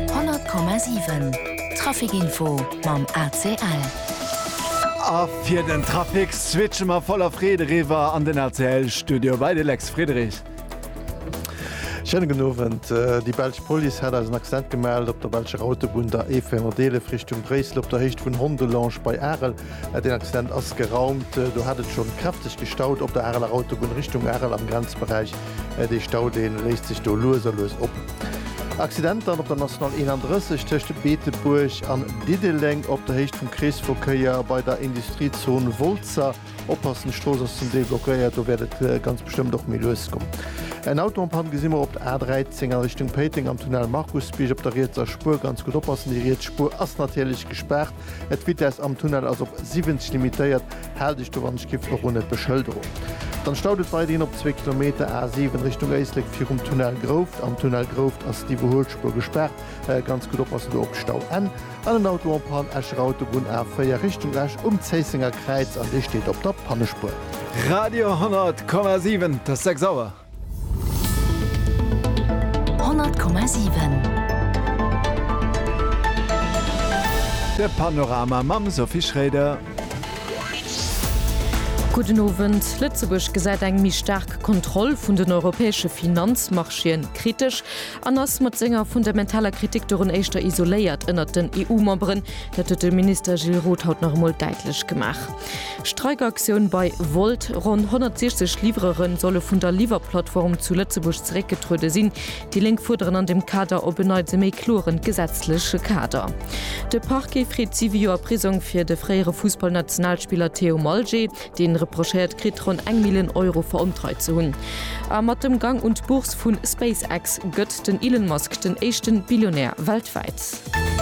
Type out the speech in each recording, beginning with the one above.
100,7 Trafic-Info mam ACL. A fir den Trafic switche mer voller Freed eriwwer an den ACL-Studio bei de Lex Friedrich. Schéine gudden Owend. Déi belsch Police hat eis en Accident gemellt op der belscher Autobunn, der E411 Richtung Bréissel, op der Héicht vun Hondelange bei Arel. Deen Accident ass geraumt. Do hat et schonn kräfteg gestaut op der Areler Autobunn Richtung Arel am Grenzberäich. Dee Stau dee léisst sech do lues a lues op. Accidenter op der National 31 tëscht Beetebuerg an Diddeleng op der Héicht vum Kreesverkéier bei der Industriezon Woltzer. Oppassen, d'Strooss ass zum Deel blockéiert, do wäert et ganz bestëmmt och méi lues goen. Eng Autoen-Pann gesi mer op der A13 a Richtung Péiteng am Tunnel Markusbierg op der rietser Spuer. Ganz gutt oppassen, déi riets Spuer ass natierlech gespaart. Et d'Vitesse am Tunnel ass op 70 limitéiert, haalt iech do wann ech giff och un et Beschëlderung. Dann staut et weiderhin op zwee Kilometer A 7 Richtung Éislek virum Tunnel Grouft. Am Tunnel Grouft ass d'Iwwerhuelspuer gespaart, ganz gutt oppassen do op d'Stau N. An en Auto en Panne, Escher Autobunn A 4 Richtung Esch um Zéissenger Kräiz an dee steet op der Pannespuer. Radio 100,7 't ass 6 Auer. De Panorama mam Sophie Schroeder. Gudden Owend. Lëtzebuerg gesäit eng méi staark Kontroll vun den europäesche Finanzmarchéë kritesch an ass mat senger fundamentaler Kritik dorun éischter isoléiert ënnert den EU-Memberen. Dat huet de Minister Gilles Roth haut nach emol däitlech gemaach. Streikaktioun bei Wolt, Ronn 160 Livreuren solle vun der Liwwerplattform zu Lëtzebuerg zeréckgetruede sinn. Déi Lénk fuerderen an dem Kader op en Neits e méi kloren gesetzleche Kader. De Parquet freet 7 Joer Prisong fir de fréiere Fussballnationalspiller Theo Malgé. Dee reprochéiert kritt, ronn eng Millioun Euro verontreit ze hunn. A mat dem Gang un d'Bourse vu SpaceX gëtt den Elon Musk den éischte Billionär weltwäit. Stat.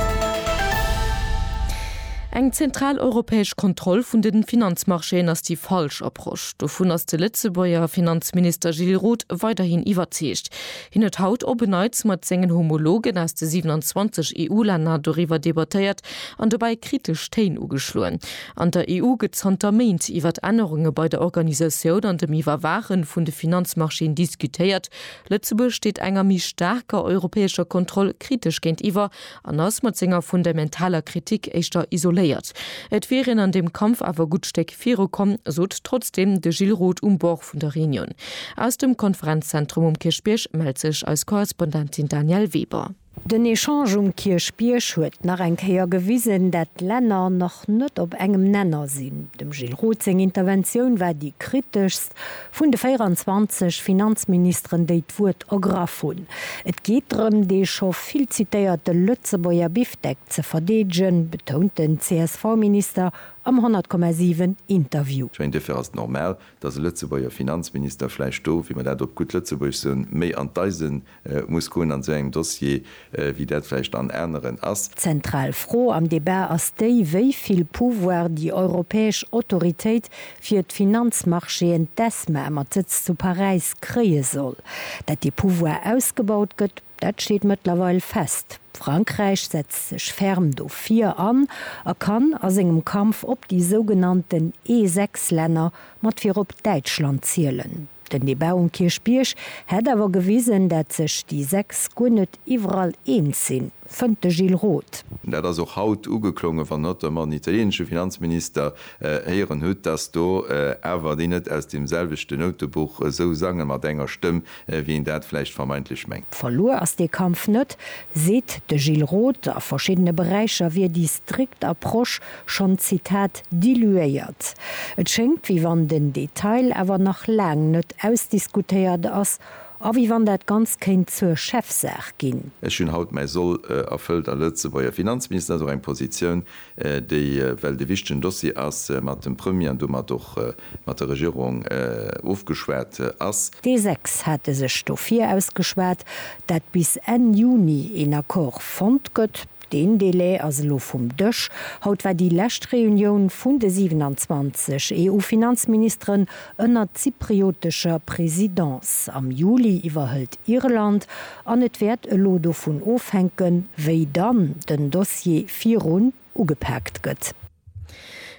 Eng zentral europäesch Kontroll vun de Finanzmarchéen ass déi falsch Approche. Dovun ass de Lëtzebuerger Finanzminister Gilles Roth weiderhin iwwerzeegt. Hien huet haut op en Neits mat sengen Homologen aus de 27 EU-Länner doriwwer debattéiert an dobäi kritesch Téin ugeschloen. An der EU gëtt zanter Méint iwwert Ännerunge bei der Organisatioun an dem Iwwerwaache vun de Finanzmarchéen diskutéiert, Lëtzebuerg steet enger méi staarker europäescher Kontroll kritesch géintiwwer an ass mat senger fundamentaler Kritik éischter isoléiert. Et wier een an deem Kampf awer e gutt Stéck viru komm, sot trotzdeem de Gilles Roth um Bord vun der Reunion. Aus dem Konferenzzentrum um Kierchbierg mellt sech eis Korrespondentin Danièle Weber. Den Echange um Kierchbierg huet nach eng Kéier gewisen, dat d'Länner nach net op engem Nenner sinn. Dem Gilles Roth seng Interventioun war déi kriteschst vun de 24 Finanzministeren, déi d'Wuert ergraff hunn. Et geet drëm, dee scho vill zitéierte Lëtzebuerger Bifdeck ze verdeedegen, betount den CSV-Minister am 100,7 Interview. Ech mengen, duerfir ass et normal, datt e Lëtzebuerger Finanzminister vläicht do, wéi mer dat op gutt Lëtzebuergesch soen, méi an d'Eisen muss goen an esou engem Dossier, wéi dat vläicht an aneren ass. D'zentral Fro am Debat ass déi, wéi vill Pouvoir déi europäesch Autoritéit fir d'Finanzmarchéen, d'ESMA, mat Sëtz zu Paräis, kréie soll. Datt dee Pouvoir ausgebaut gëtt, dat steet mëttlerweil fest. Frankräich setzt sech ferm dofir an a kann a sengem Kampf op déi sougenannten E6-Länner mat virop Däitschland zielen. Den Debat um Kierchbierg hätt awer gewisen, dat sech déi 6 guer net iwwerall eens sinn, fënnt de Gilles Roth. Dat ass och haut ugeklongen, wann hatt der mat den italienesche Finanzminister héieren hutt, datt do awer déi net aus deem selwechten Noutebuch esou sangen, mat enger Stëmm wéi een dat vläicht vermeintlech mengt. Verluer ass dee Kampf net, seet de Gilles Roth. A verschiddene Beräicher wier déi strikt Approche schonn, Zitat, diluéiert. Et schéngt, wéi wann den Detail awer nach laang net ausdiskutéiert ass a wéi wann dat Ganzt kéint zur Chefsaach ginn. Ech hunn haut mäi Soll erfëllt a Lëtzebuerger Finanzminister ass och eng Positioun, déi, well et e wichtegen Dossier ass, mat dem Premier an domat och mat der Regierung ofgeschwat ass. Déi sechs hate sech dofir ausgeschwat, dat bis Enn Juni een Accord fonnt gëtt. Deen Delai ass elo vum Dësch. Haut war déi lescht Reunioun vun de 27 EU-Finanzministeren ënner zypriotescher Presidence. Am Juli iwwerhëlt Irland. An et wäert elo dovun ofhänken, wéi dann den Dossier virun ugepaakt gëtt.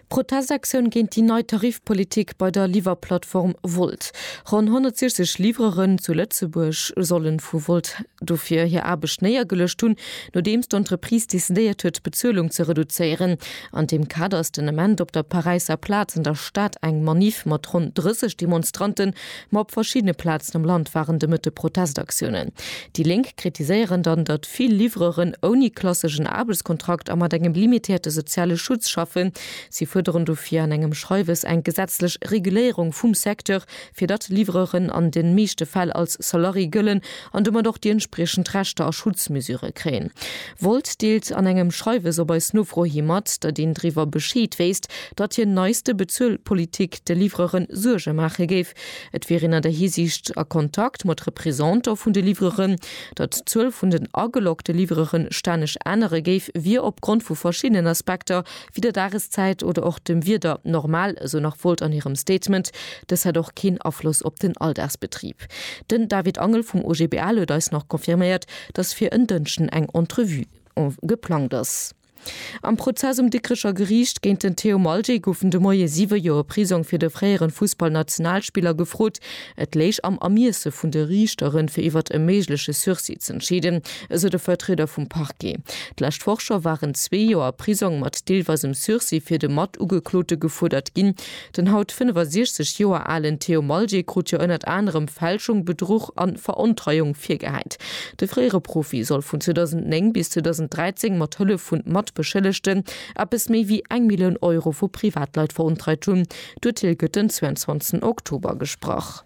Protestaktioun géint déi nei Tarifpolitik bei der Liwwerplattform Wolt. Ronn 160 Livreuren zu Lëtzebuerg solle vu Wolt dofir hir Aarbecht néiergeluecht hunn, nodeems d'Entreprise decidéiert huet, d'Bezuelung ze reduzéieren. An deem Kader ass den Ament op der Paräisser Plaz an der Stad eng Maniff mat ronn 30 Demonstrante Ma op verschiddene Plazen am Land waren de Mëtte Protestaktiounen. Déi Lénk kritiséieren dann, datt vill Livreuren ouni klasseschen Aarbechtskontrakt a mat engem limitéierte soziale Schutz schaffen. Si fuerderen dofir an engem Schreiwes eng gesetzlech Reguléierung vum Secteur, fir datt Livreuren an de meeschte Fäll als Salarié gëllen an domat och déi entspriechend Rechter a Schutzmesure kréien. Wolz deelt an engem Schreiwes op eis Nofro hi mat, datt een driwwer Bescheed wéisst, datt hir neiste Bezuelpolitik de Livreuren Suerge maache géif. Et wier een an der Hisiicht a Kontakt mat Represanter vun de Livreuren. Datt d'Zuel vun den ageloggte Livreuren stänneg ännere géif, wier opgrond vu verschiddenen Aspekter, wéi der Dageszäit oder och dem Wieder, normal, esou nach Wolz an hirem Statement. Dës hätt och keen Afloss op den Alldagsbetrib. Den David Angel vum OGBL huet eis nach confirméiert, dass fir en Dënschden eng Entrevue geplangt ass. Am Prozess um Dikrecher Geriicht géint den Theo Malje goufen de Moie siwe Joer Prisong fir de fréieren Fussballnationalspiller gefrot. Et léich am Ermiesse vun de Riichteren, fir iwwert e méigleche Sursis z'entscheeden, esou de Vertrieder vum Parquet. D'lescht Woch scho waren zwee Joer Prisong mat deelweisem Sursis fir de Matugeklote gefuerdert ginn. Den haut 65 Joer alen Theo Malje krut jo ënnert anerem Fälschung, Bedruch a Verontreiung virgehäit. De fréiere Profi soll vun 2009 bis 2013 mat Hëllef vun Matbeschëllegten eppes méi wéi eng Millioun Euro vu Privatleit verontreit hunn. D'Urteel gëtt den 22 Oktober gesprach.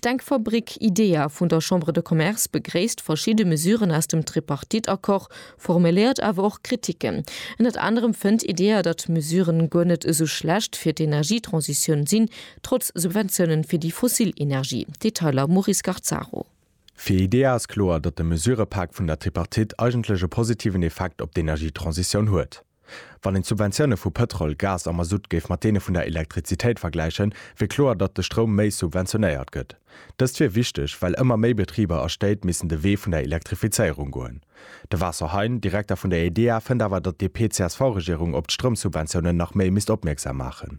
D'Denkfabrik IDEA vun der Chambre de Commerce begréisst verschidde Mesuren aus dem Tripartite-Accord, formuléiert awer och Kritiken. Ënnert anerem fënnt IDEA, datt d'Mesuren guer net esou schlecht fir d'Energietransitioun sinn, trotz Subventiounen fir déi fossil Energie. Detailer, Maurice Garzaro. Fir IDEA ass kloer, datt de Mesurëpak vun der Tripartite eigentlech e positiven Effekt op d'Energietransitioun huet. Wann een d'Subventioune vu Pëtrol, Gas a Masutt géif mat deene vun der Elektrizitéit vergläichen, wier kloer, datt de Stroum méi subventionéiert gëtt. Dëst wier wichteg, well ëmmer méi Betriber a Stéit missen de Wee vun der Elektrifizéierung goen. De Vaso Hein, Direkter vun der EDEA, fënnt awer, datt d'DP-CSV-Regierung op d'Stroumsubventiounen nach méi misst opmierksam maachen.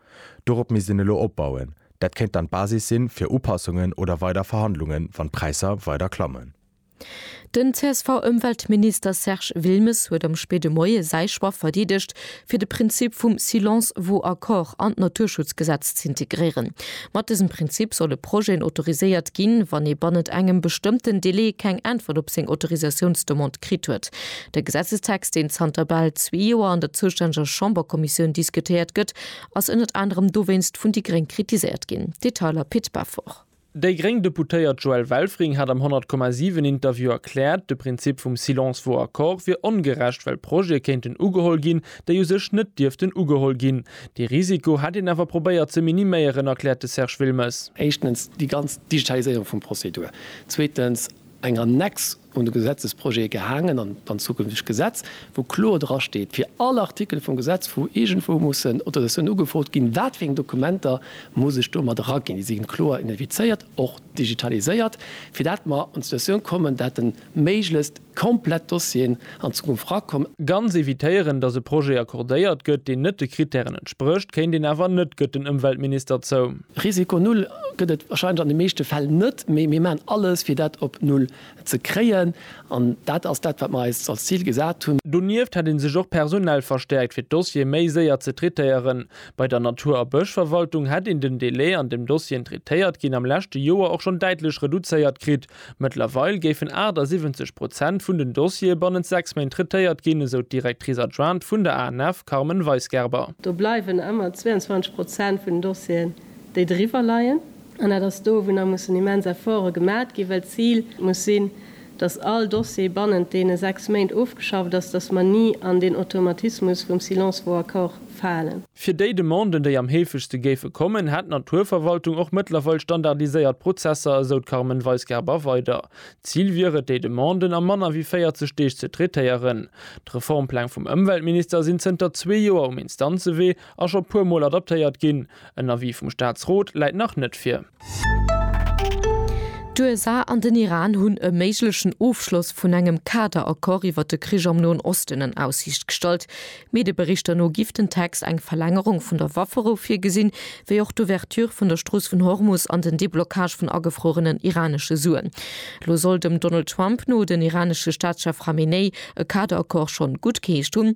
Dorop misst een elo opbauen. Dat kéint dann d'Basis sinn fir Upassungen oder weider Verhandlungen, wann d'Präisser weider klammen. Den CSV-Ëmweltminister Serge Wilmes huet am spéide Moie säi Choix verdeedegt, fir de Prinzip vum Silence vaut accord an d'Naturschutzgesetz z'integréieren. Mat dësem Prinzip solle Projeten autoriséiert ginn, wann ee bannent engem bestëmmten Delai keng Äntwert op seng Autorisatiounsdemande kritt huet. De Gesetzestext, deen zanter bal zwee Joer an der zoustänneger Chamberkommissioun diskutéiert gëtt, ass ënnert anerem dowéinst vun déi gréng kritiséiert ginn. Detailer Pit Beffort. Déi gréng Deputéiert Joëlle Welfring hat am 100, 7 Interview erkläert, de Prinzip vum Silence vaut accord wier ongerecht, well Projete kéinten ugeholl ginn, déi u sech net dierften ugeholl ginn. Dee Risiko hätt een awer probéiert ze miniméieren, erkläert de Serge Wilmes. Éischtens déi ganz Digitaliséierung vum Prozedur. Zweetens eng Annex un de Gesetzesprojet gehaangen an dann zukünftegt Gesetz, wou kloer dra steet, fir all Artikel vum Gesetz, wou iergendwou mussen Autorisatiounen ugefrot ginn, wat fir eng Dokumenter muss ech do mat eraginn. Déi si kloer identifizéiert, och digitaliséiert, fir dat mer an d'Situatioun kommen, dat de méiglechst komplett Dossieren an Zukunft erakomm. Ganz evitéieren, datt e Projet accordéiert gëtt, deen net de Krittären entsprécht, kéint een awer net, gëtt den Ëmweltminister zou. Risiko Null gëtt et wahrscheinlech an de meeschte Fäll net, mee mir maachen alles, fir dat op Null ze kréien. An dat ass dat, wat mir eis als Zil gesat hunn. Donieft hätt ee sech och personell verstäerkt, fir d'Dossiere méi séier ze traitéieren. Bei der Natur a Bëschverwaltung hätt een den Delai, an deem Dossieren traitéiert ginn, am leschte Joer och schonn däitlech reduzéiert kritt, Mëttlerweil géifen 78 Prozent vun den Dossiere bannent sechs Méint traitéiert ginn, esou d'Directrice adjointe vun der ANF Carmen Weisgerber. Do bleiwen ëmmer 22 Prozent vun den Dossieren, déi driwwer leien. An dat ass do, wou nach mussen immens Efforte gemat ginn, well d'Zil muss sinn, datt all Dossier bannent deene sechs Méint ofgeschafft ass, datt mer ni an deen Automatismus vum Silence vaut accord falen. Fir déi Demanden, déi am heefegste géife kommen, hätt d'Naturverwaltung och mëttlerweil standardiséiert Prozesser, esou d'Carmen Weisgerber weider. D'Zil wier et, déi Demanden a manner wéi 40 Deeg ze traitéieren. D'Reformpläng vum Ëmweltminister sinn zënter zwee Joer um Instanzewee a scho puermol adaptéiert ginn. En Avis vum Staatsrot läit nach net vir. D'USA an den Iran hunn e méiglechen Ofschloss vun engem Kader-Accord iwwer de Krich am Noen Osten an Aussiicht gestallt. Medieberichter no giff den Text eng Verlängerung vun der Wafferou virgesinn, wéi och d'Ouverture vun der Strooss vun Hormus an den Deblockage vun agefruerenen iranesche Suen. Lo soll dem Donald Trump no den iranesche Staatschef Khamenei e Kader-Accord schonn guttgeheescht hunn.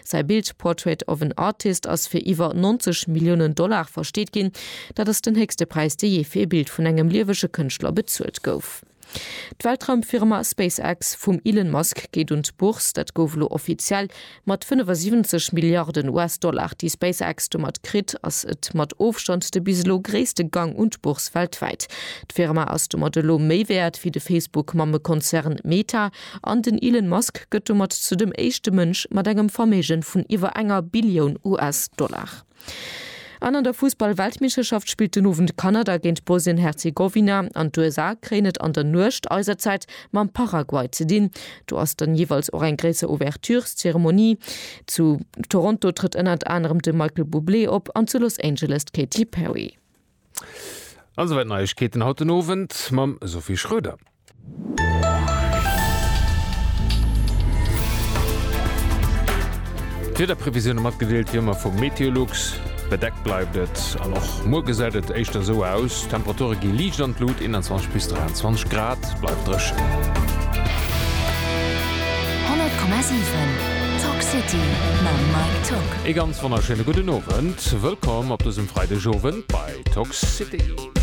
Säi Bild Portrait of an Artist ass fir iwwer 90 Milliounen Dollar versteet ginn. Dat ass den héchste Präis, dee jee fir ee Bild vun engem liewege Kënschtler bezuelt gouf. D'Weltraumfirma SpaceX vum Elon Musk geet un d'Bourse. Dat gouf elo offiziell. Mat 75 Milliarden US-Dollar, déi SpaceX domat kritt, ass et mat Ofstand de bis elo gréisste Gang un d'Bourse weltwäit. D'Firma ass domat elo méi wäert wéi de Facebook-Mammekonzern Meta. An den Elon Musk gëtt domat zu dem éischte Mënsch mat engem Verméigen vun iwwer enger Billioun US-Dollar. An an der Fussball-Weltmeeschterschaft spillt den Owend Kanada géint Bosnien-Herzegowina an d'USA kréien et an der Nuecht eiser Zäit mam Paraguay ze dinn. Do ass dann jeeweils och eng gréisser Ouvertureszeremonie. Zu Toronto trëtt ënnert anerem de Michael Bublé op an zu Los Angeles d'Katy Perry. An souwäit Neiegkeeten haut den Owend mam Sophie Schröder. D'Wiederprevisioune matgedeelt wéi ëmmer vum Meteolux. Bedeckt bleift et an och muer gesäit et éischter esou aus. D'Temperature gi liicht an d'Lut, 21 bis 23 Grad, bleift dréchen. 100,7 Talk City mam Mike Tock. Ee ganz wonnerschéine gudden Owend. Wëllkomm op dësem Freidegowend bei Talk City.